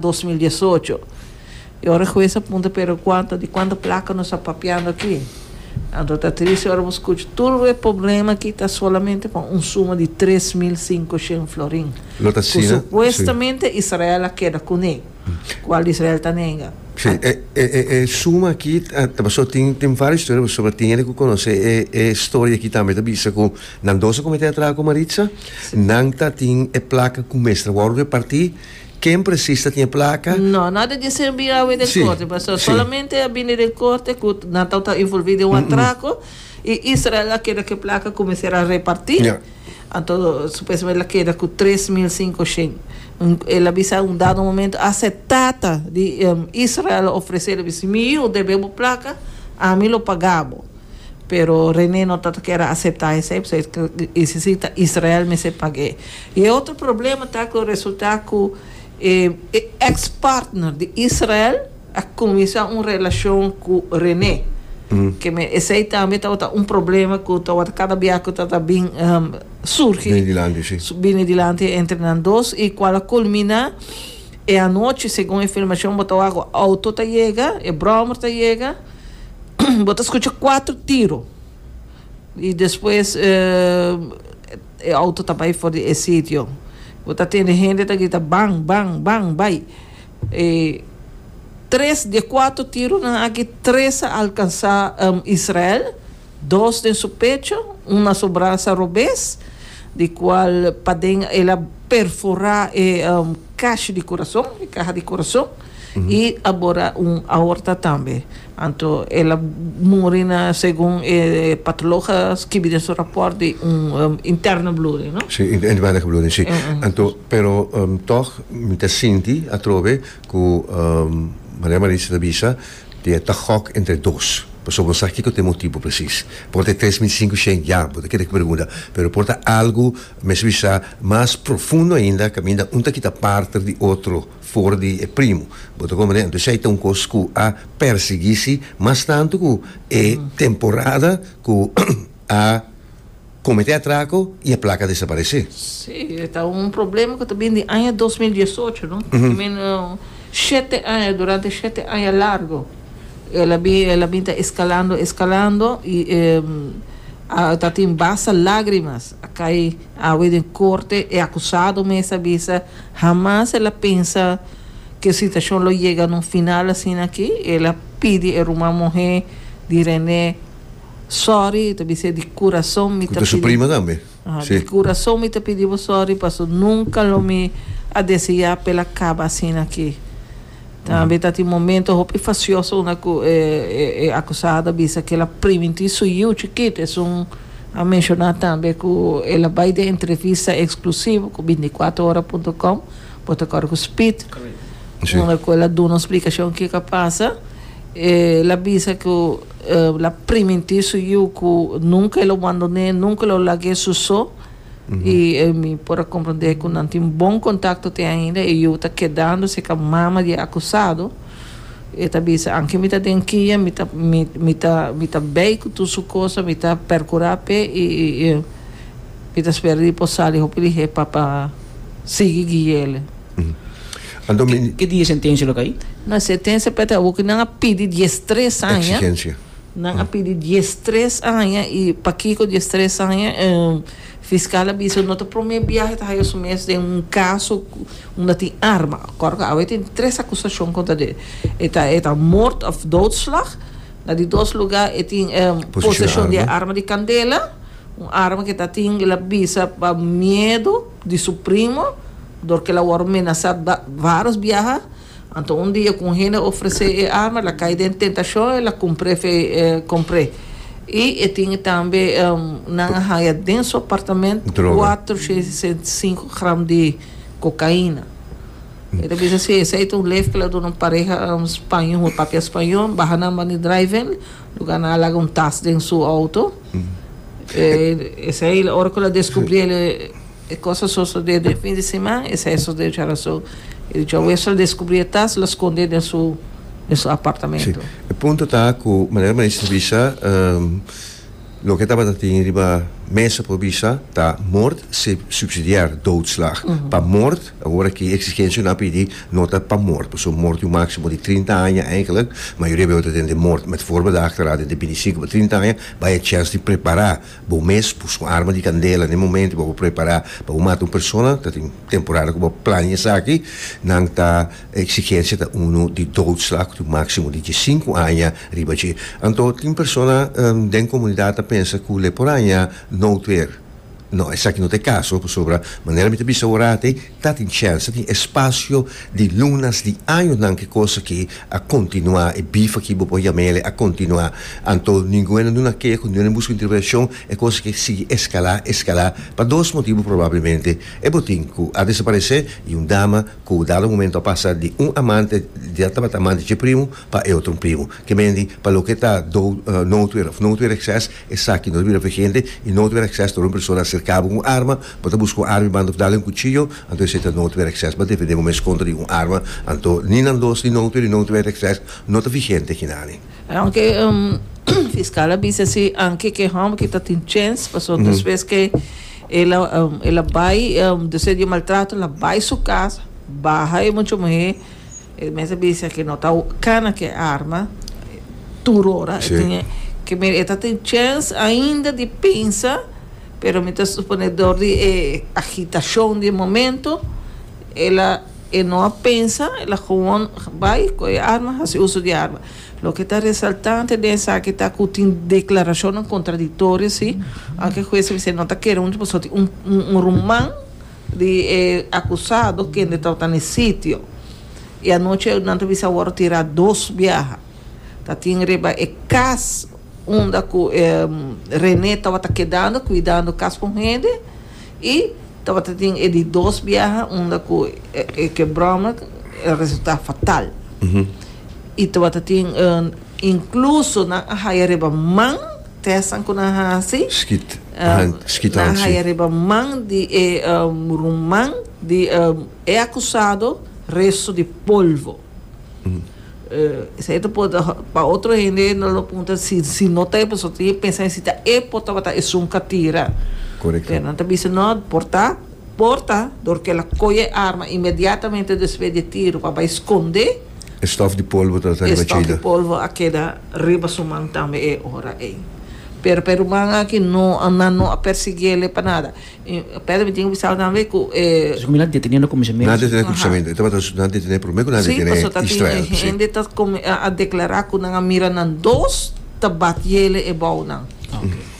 dos mil diesocho. E ora hues a punta pero cuanta di cuanta placa nos a papiando aki. Anto ta tristi ora bo scucha tur e problema aki ta solamente pa un suma di tres mil cinco shen florin Lo ta cu asina, si. supuestamente Israel a keda cune, cual Israel ta nega. Si, e e e suma aki ta paso tin tin varios historia paso a tin hende cu conoce e e storia aki tambe ta bisa cu nan dos a comete atraco Maritza, nan ta tin e placa cu mester wor reparti Ken presis ta tin e plaka? No, no a ta dise bin a awe den korte, pastor. Solamente a bini den korte ku nan tau ta involvi den un atrako i Israel a keda ku e plaka kuminsé a reparti. Anto supuestamente el a keda ku tres mil sinku shen. El a bisa un dado momento a se tata di Israel a ofresé, a bisa, Mi yu, deb'é bo plaka, ami lo pagá bo. Pero René no ta ta kere aseptá esei, pasobra e ta isi si ta Israel mester pag'é. I e otro problema ta ku resultá ku e eks partner di Israel a kuminsá un relashon ku René. Ke me esei tambe tabata un problema ku tabata kada bia ku ta ta bin surgi, Bini dilanti, sí. bini dilanti entre nan dos i kual a kulminá e anochi, segun e filmashon bo ta wak ku auto ta yega, e bròmer ta yega. Bo ta scucha cuatro tiro y despues e auto ta bay for di e sitio. Bo ta tende hende ta grita ban, ban, ban, bay. E tres di e cuatro tironan aki, tres a alcansa Israel, dos den su pecho, un na su brasa robes, di cual paden el a perfora e cash di curason, e caha di curason. Y abora un aorta tambe. Anto el a muri na segun e patolog a skibi den su raport di un interno bloeding, no? Si, un inwendige bloeding, si. Anto, pero tog mi ta sinti atrobe ku Maria Maritza ta bisa di e ta gok entre dos. Paso bo sa kiko ta e motibu presis. Por ta e tres mil sinku shen ya, bo ta kere pregunta. Pero por ta algu, mester bisa mas profundo ainda, kaminda un ta kita parter di otro. for di e primo, bo ta comprende? Entonces ey ta un cos cu a persiguí si, mas tanto cu e temporada cu a comete atraco y a placa desaparece. Sí, e ta un problema cu ta bini di aña dos mil diesocho, no? I mean, shete aña, durante shete aña largo el a bin, el a bin ta escalando, escalando y a tatin basta lagrimas A kai awe den korte, e akusado mes a bisa hamas el a pensa ku e situashon lo yega na un final asina aki. El a pidi e ruman muhé di René sòri, el ta bis'é di kurason mi ta pidi. Ku ta su prima tambe. Aha, di kurason mi ta pidi bo sòri paso nunka lo mi a deseá pa el a kaba asina aki. Tambe ta tin momento hopi fasioso unda cu e e acusado a bisa cu el a priminti su yiu chikit. Esun a menciona tambe cu el a bay den entrevista exclusivo cu binticuatrohorapuntocom, bo ta acorda cu Speed? Si. Unda cu el a duna un splicacion kico a pasa. El a bisa cu el a priminti su yiu cu nunca el lo bandoné, nunca lo lag'é su so. i mi por a komprondé ku nan tin bon kontakto te ainda i yu ta kedando serka mama di e akusado. E ta bisa, Anke mi ta den kia, mi ta mi mi ta mi ta bei ku tur su kosa, mi ta perkurá p'e i i mi ta spera di por sali hopi lihé pa pa sigui guiéle. Anto mi. Ke dia e sentensia lo ka i? Na sentensia p'e ta habu ku nan a pidi diestres aña. Eksigensia. Nan a pidi dies tres aña y pakico dies tres aña? Fiscal a bisa no ta prome biahe ta haya su mes den un caso unda tin arma, acordo cu awe tin tres acusacion contra de e ta e ta moord of doodslag, na di dos lugar e tin posecion di e arma di candela, un arma cu e ta tin el a bisa pa miedo di su primo dor cu el a wor menasa baros biaha. Anto un dia ku un hende a ofresé e arma, el a kai den tentashon, el a kumpr'é fe e kompr'é. I e tin tambe, nan a haya den su apartament kuater shesenta i sinku gram di kokaina. E ta bisa si esei ta un lef ku el a duna un pareha spañó, un papia spañó, baha nan ban di drive-in, lugar nan a laga un tas den su outo. Esei ora ku el a deskubrí el. E cos a sosode den fin di siman, esey a sosode oca razo e dicho a Wessel descubri e tas lo sconde den su den su apartamento. Si, e punto ta cu manera Maisha bisa, loke tabata tin riba mesa por bisa ta moord se subsidiar doodslag pa moord, awor aki exigencia nan a pidi no ta pa moord, pasobra moord tin un maximo di trinta aña eigenlijk, mayoria beu ta den den moord met voorbedachte raad den di bintisinco pa trinta aña, bai e chance di prepara Bo mes pus un arma di kandela n'e momento ku bo ta prepará pa bo mata un persona, ta tin temporada ku bo plania esaki, nan ta e eksigensia ta unu di doodslag ku tin un máksimo di diesinku aña riba dje. Anto tin persona den komunidat ta pensa ku le por aña nout weer. No, esaki no ta e kaso, pasobra manera mi ta bisa ora atei, Ta tin chèns, ta tin espasio di lunas di añonan ki kos akí a kontinuá, e bif akí bo por yama el e a kontinuá. Anto ningun a na duna kea ku ningun a na buska intervenshon, e kos akí a sigui eskalá, eskalá, pa dos motibu probablemente. E bo tin ku a desaparesé i un dama ku dado momento a pasa di un amante, di a tabata amante dje primu pa e otro un primu. Ke mendi pa loke ta do no tuer of no tuer ekses, esaki no ta bira vigente i no tuer ekses ta ora un persona aserká bo ku un arma Bo ta buska un arma i banda ku dal den kuchillo, anto esei ta noutwet access. Bo ta defendé bo mes kontra di un arma, anto ni nan dos ni noutwet di noutwet access no ta vigente akinani. Aunke fiskal a bisa si anke ke hòmber ke ta tin chèns, paso despues ke el a bai despues di e maltrato el a bai su kas, baha e mucha muhé, el mes a bisa ke no ta kana ke arma tur ora. E tin ke mira e ta tin chèns ainda di pensa Pero mi ta suponé dor di e agitashon di e momento, el a, e no a pensa, el a gewoon bai, kohe e arma, hasi uso di e arma. Loke ta resaltante den esaki ta ku tin deklarashonnan kontradiktorio así, aunke e hues a bisa e no ta kere huntu pasobra tin un, un ruman di e akusado kende tabata na e sitio. I anochi nan ta bisa awor a tira dos biaha. Ta tin riba e cas unda cu e René tabata kedando cuidando cas con hende y tabata tin e di dos biaha unda cu e ke broma a resulta fatal y tabata tin incluso nan a haya riba man testnan cu nan haci nan a haya riba man di e ruman di e acusado resto di polvo. Esei ta por pa otro hende nan lo puntra si si no ta e persona tin e pensa si ta e por tabata esun ka tira Correcto. pero nan ta bisa no por ta por ta dor ke el a coge e arma inmediatamente despues di e tiro pa bay sconde E stof di polvo ta e riba stof di chida. polvo a keda riba su man tambe e ora ey pero pe ruman aki no nan no a persiguele pa nada. Pèrdida mi tin ku bisa tambe ku e. Esaki mi na detene na kuminsamentu. Na detene na kuminsamentu. E tabata nan detene promé ku nan detene Israel. Si, pasobra ta tin e hende ta a deklará ku nan a mira nan dos ta bat yele e bou nan.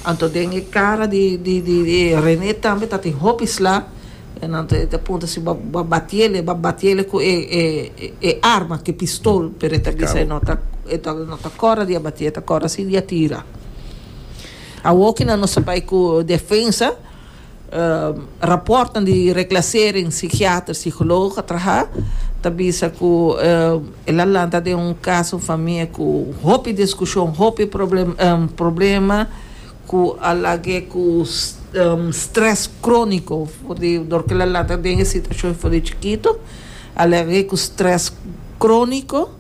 Anto den e kara di di e René tambe tatin hopi sla. Anto e ta punta si bo a bat yele, bo a bat yele ku e e arma, ku e pistol, pero e ta bisa e no ta e no ta kòrda di a bat'é, e ta kòrda si di a tira. Awor cu nan nos a bay cu defensa, raportnan di reclasering psiquiater, psicologo a traha ta bisa cu el a lanta den un caso famia cu hopi discusion, hopi problema cu a lag'e cu stress cronico for di dor cu el a lanta den e situacion for di chikito a lag'e cu stress cronico.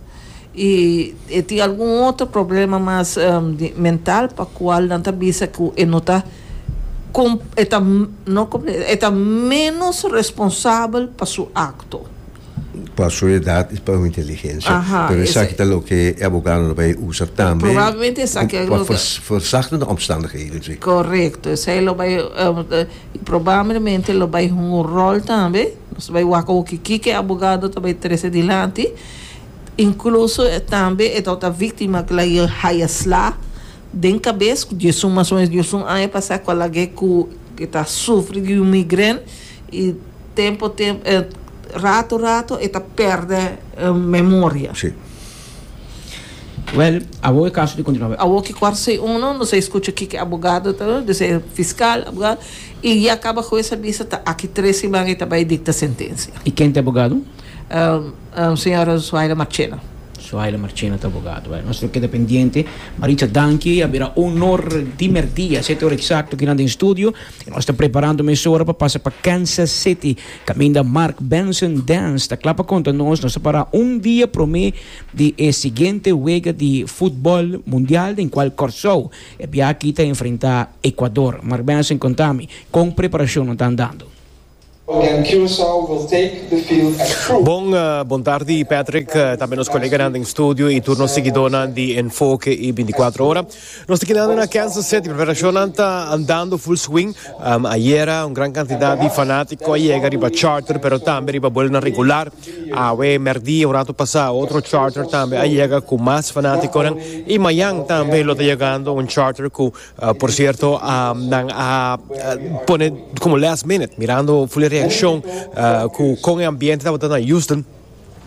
y e tin algun otro problema mas di mental pa cual nan ta bisa cu e no ta com e ta no compre e ta menos responsabel pa su acto. Pa su edad y pa su inteligencia. Aha, Pero esa. esaki ta loke e abogadonan bay usa tambe. Probablemente esaki cu pa loke. ver verzachten de omstandigheden si. Correcto, esey lo bay y probablemente lo bay hunga un rol tambe, nos ta bay wak oki kiko e abogado ta bay trece dilanti. Incluso tambe e tabata victima cu la haya sla den cabes cu dies un mas o menos dies un aña pasa cu alag'e cu e ta sufri di un migren y tempo tempo rato rato e ta perde memoria. Si. Well awo e caso di continua wak. Awo ki cuarto y uno nos a escucha kico abogado ta duna, dios sea fiscal, abogado y ya caba hues a bisa ta aki tres siman y ta bay dicta sentencia. Y ken ta e abogado? Señora Zuhaila Marchena. Zuhaila Marchena ta abogado. Bueno, nos lo keda pendiente. Maritza, danki. A bira un honor di merdí. A sete ora eksakto aki nan den studio. I nos ta preparando mesora pa pasa pa Kansas Siti kaminda Mark Benson Dance ta kla pa konta nos. Nos ta para un dia promé di e siguiente wega di futbòl mundial den kual Kòrsou e biaha aki ta enfrentá Ekuador. Mark Benson konta mi kon preparashonnan ta andando. Again Curaçao will take the field at Crew. Bon bontardi Patrick, tambe nos koleganan den studio y tur nos siguidornan di Enfoke y Binticuatro Ora. Nos ta kinando na Kansas City, preperacionnan ta andando full swing. Ayera un gran cantidad di fanatico a yega riba charter pero tambe riba buelnan regular. Awe merdia un rato pasa otro charter tambe a yega cu mas fanaticonan y mayan tambe lo ta yegando un charter cu Uh, por cierto, uh, nan a uh, pone como last minute, mirando full reacción uh, cu, con el ambiente tabata na Houston.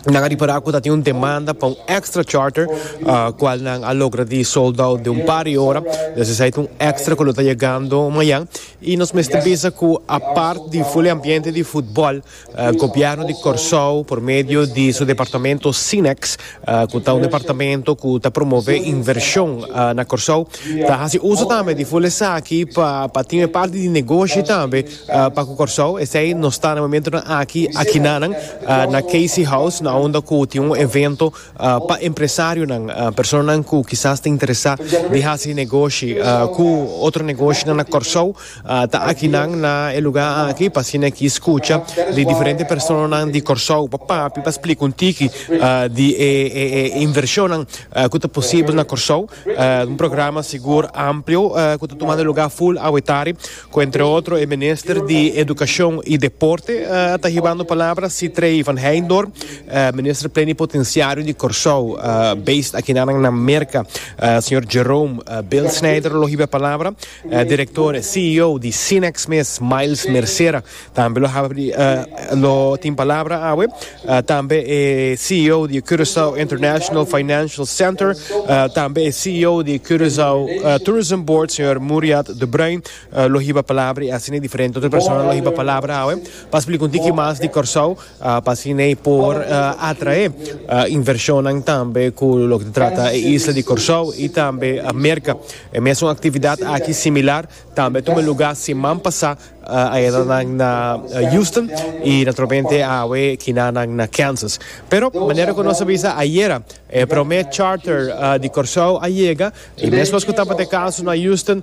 Nan a reparar cu dat un demanda pa un extra charter, uh, cual nan a logra di sold out de un par de hora. Dus is un extra cu lo ta llegando mañana. Y nos mester bisa cu apart di full ambiente di fútbol, Gobièrnu di Kòrsou por medio di su departamento Sinex, ku ta un departamento ku ta promové invershon na Kòrsou, ta hasi uso tambe di ful esaki pa tin e parti di negoshi tambe pa ku Kòrsou. Esei nos ta na momentunan aki akinanan na KC House na unda ku tin un evento pa empresarionan, personanan ku kisas ta interesá di hasi negoshi ku otro negoshinan na Kòrsou. Ta aki nan na e lugá aki pa asina e ki skucha di diferente personanan di Kòrsou pa papia, pa splika un tiki di e invershonnan ku ta posibel na Kòrsou. Un programa sigur amplio ku ta tumando e lugá ful awetari ku entre otro e minister di Edukashon i Deporte a ta hibando palabra, Sitrey van Heijndorp, Minister Plenipotensiario di Kòrsou based aki nan na Merka, señor Jerome Bilsnijder lo hiba e palabra. E direktor, CEO, di Cinex mes, Miles Mercera, tambe lo habri di e lo tin palabra awe. Tambe e CEO di Curaçao International Financial Center, tambe e CEO di Curaçao Tourism Board, señor Muriat de Bruin, lo hiba palabra y asina diferente otro persona lo hiba palabra awe pa splica un tiki mas di Kòrsou. pa asina e por atrae invershonnan tambe ku loke ta trata e isla di Kòrsou i tambe Merka. E mesun aktividat aki similar tambe a tuma lugá siman pasá ayedanan na Houston i naturalmente awe kinanan na Kansas. Pero manera ku nos a bisa ayera e promé charter di Kòrsou a yega i mesmes ku tabata e kaso na Houston,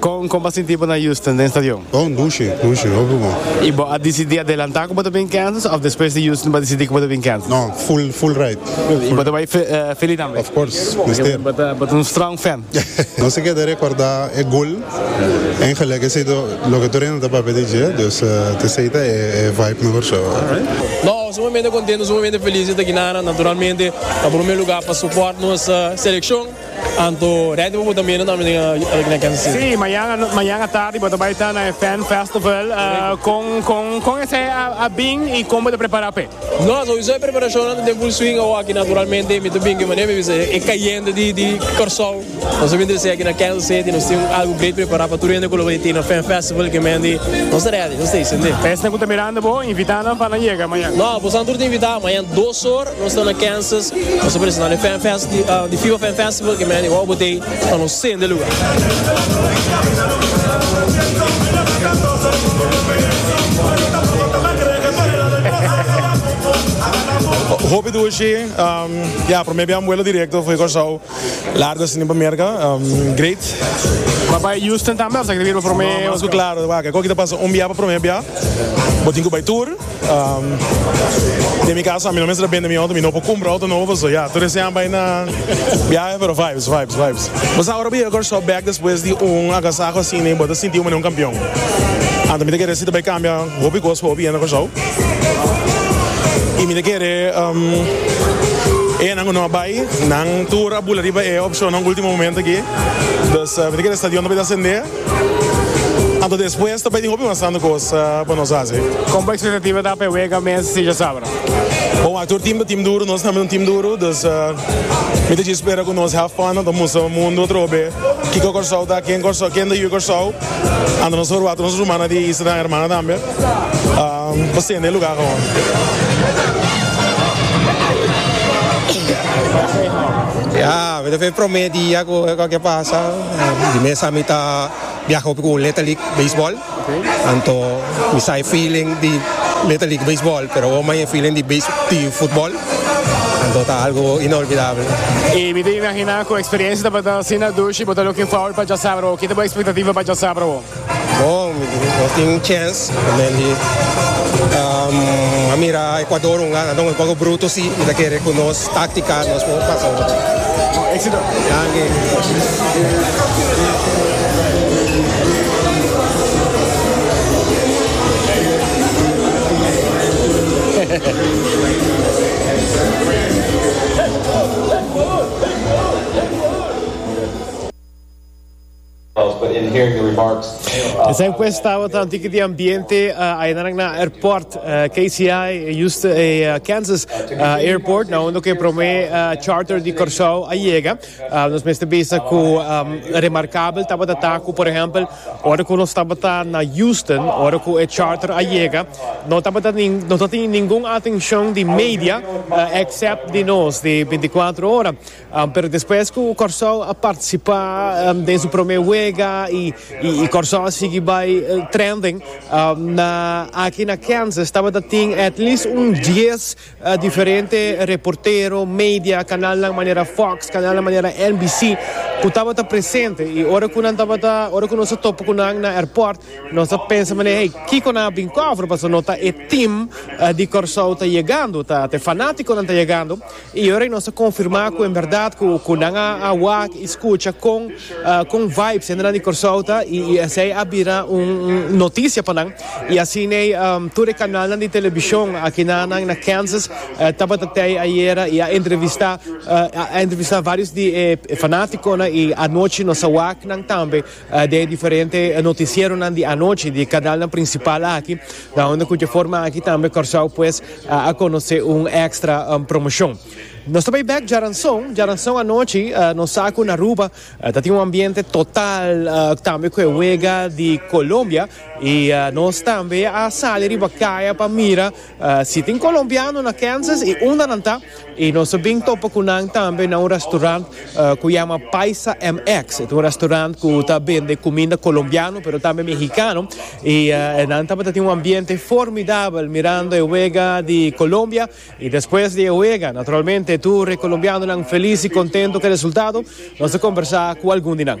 Kon bo a sinti bo na Houston den stadion? Oh, dushe, dushe, hopi bon. Y bo a disidí adelantá ku bo ta bin Kansas of despues di Houston bo a disidí ku bo ta bin Kansas? No, full, full right. Y bo ta bai Philly tambe? Of course, mester. Bo ta un strong fan. Nos a keda rekordá e gol en gelijk esei ta loke tur hende ta papia di dje, dus ta esei ta e vibe mehor shó. No, sumamente contento, sumamente feliz di ta aki na Aran. Naturalmente, na prome lugar pa support nos seleccion. Anto rènti bo bo ta mira tambe den e Kansas City? Sí, mañana mañana tardi bo ta bai ta na e Fan Festival. Kon kon kon esei a bin i kon bo ta prepará p'e? No, souiso e preparashonnan ta den full swing awor aki. Naturalmente mi ta bin ku e manera mi bisa e kayente di di Kòrsou. Nos a bin ta esei aki na Kansas City. Nos tin algu great prepará pa tur hende ku lo bai tin na Fan Festival. Ke mende nos ta rèdi, nos ta bai. Esnan ku ta mirando bo, invitá nan pa nan yega mañana. No, boso nan tur ta invitá. Mañana dos or. Nos ta na Kansas, nos a presentá den Fan Fest di, ah, di FIBA Fan Festival, ke Manny wou bot'ei pa nos sende lugar. Hopi dushi, ehm, ya, prome biaha mbuelo directo fo'i Kòrsou, largo asina pa Merka, ehm, great. Bo a bai Houston tambe of ta kere bira pa prome. No, mas ku klaro, wak, e koki ta pasa un biaha pa prome biaha, bo tin ku bai tur. Den mi casa, mi no mester a bende mi auto, mi no por cumpra auto nobo pasobra ya, tur ese an bay na biahe pero vibes, vibes, vibes. Bo sa ora bo yega Kòrsou bek despues di un agasaho asina y bo ta sinti bo manera un campeon. Anto mi ta kere si ta bay cambia hopi cos pa hopi hende na Kòrsou y mi ta kere enan cu no a bay nan tur a bula riba e opcionnan ultimo momento aki. Dus mi ta kere e stadion ta bay ta asende. Anto despues ta bay tin hopi mas santo cos pa nos haci. Con bo expectativa ta pa e wega mes di sinja sabra? Bon, a tur team ta team duro, nos tambe un team duro, dus mi ta dje spera cu nos have fun, ta mustra mundo otro be kico Corsou ta, ken Corsou, ken ta yu Corsou, anto nos ta por wata nos rumannan di e islanan hermana tambe, pa sende e lugar awor. Ya, mi ta fe prome dia cu e cosa ke pasa. Di mes a mi ta biaha hopi ku Little League Baseball. Anto mi sa e feeling di Little League Baseball, pero awor mai e feeling di base di futbol. Anto ta algu inolvidable. Y mi ta imagina cu experiencia tabata asina dushi bo ta looking forward pa djasabra awor. Kiko ta bo expectativa pa djasabra awor? Bon, mi tin no tin un chèns pa Mandy. A mira Ekuador un gana don un poco bruto si y ta kere cu nos táctica nos por pasa un poco. Bon éxito. Danke. Esei pues tabata un tiki di ambiente ayenanan na airport KCI Houston Kansas airport na unda ku e prome charter di Kòrsou a yega. Nos mester bisa ku remarkabel tabata ta ku por ehèmpel ora ku nos tabata na Houston ora ku e charter a yega no tabata no ta tin ningun atenshon di media èksèp di nos di binti kuater ora. Pero despues cu Corsou a participa den su prome wega y Corsou a sigui bay trending na aki na Kansas tabata tin at least un dies diferente reportero, media, canalnan manera Fox, canalnan manera NBC cu tabata presente y ora cu nan tabata ora cu nos a topa cu nan na airport nos a pensa manera hey kico nan a bin cover pasobra no ta e team di Corsou ta yegando ta e fanaticonan ta yegando. Y ora y nos a confirma cu en verdad cu cu nan a a wak y scucha con con vibes hendenan di Corsou ta y y esey a bira un un noticia pa nan y asiney tur e canalnan di television aki na na na Kansas tabata tey ayera y a entrevista a entrevista varios di e fanaticonan y anochi nos a wak nan tambe Den e diferente noticieronan di anochi di canalnan principal aki, laonde cu dje forma aki tambe Curaçao pues a conoce un extra promocion. Nos ta bay bek Jaranson, Jaranson anochi nos sa cu n'Aruba ta tin un ambiente total tambe cu e wega di Colombia y nos tambe a sali riba caya pa mira Si tin colombiano na Kansas y unda nan ta y nos a bin topa cu nan tambe na un restaurant cu yama Paisa MX. E ta un restaurant cu ta bende cuminda colombiano pero tambe mexicano y nan tabata tin un ambiente formidabel mirando e wega di Colombia y despues di e wega naturalmente tur e colombianonan feliz y contento cu e resultado. Nos a conversa cu algun di nan.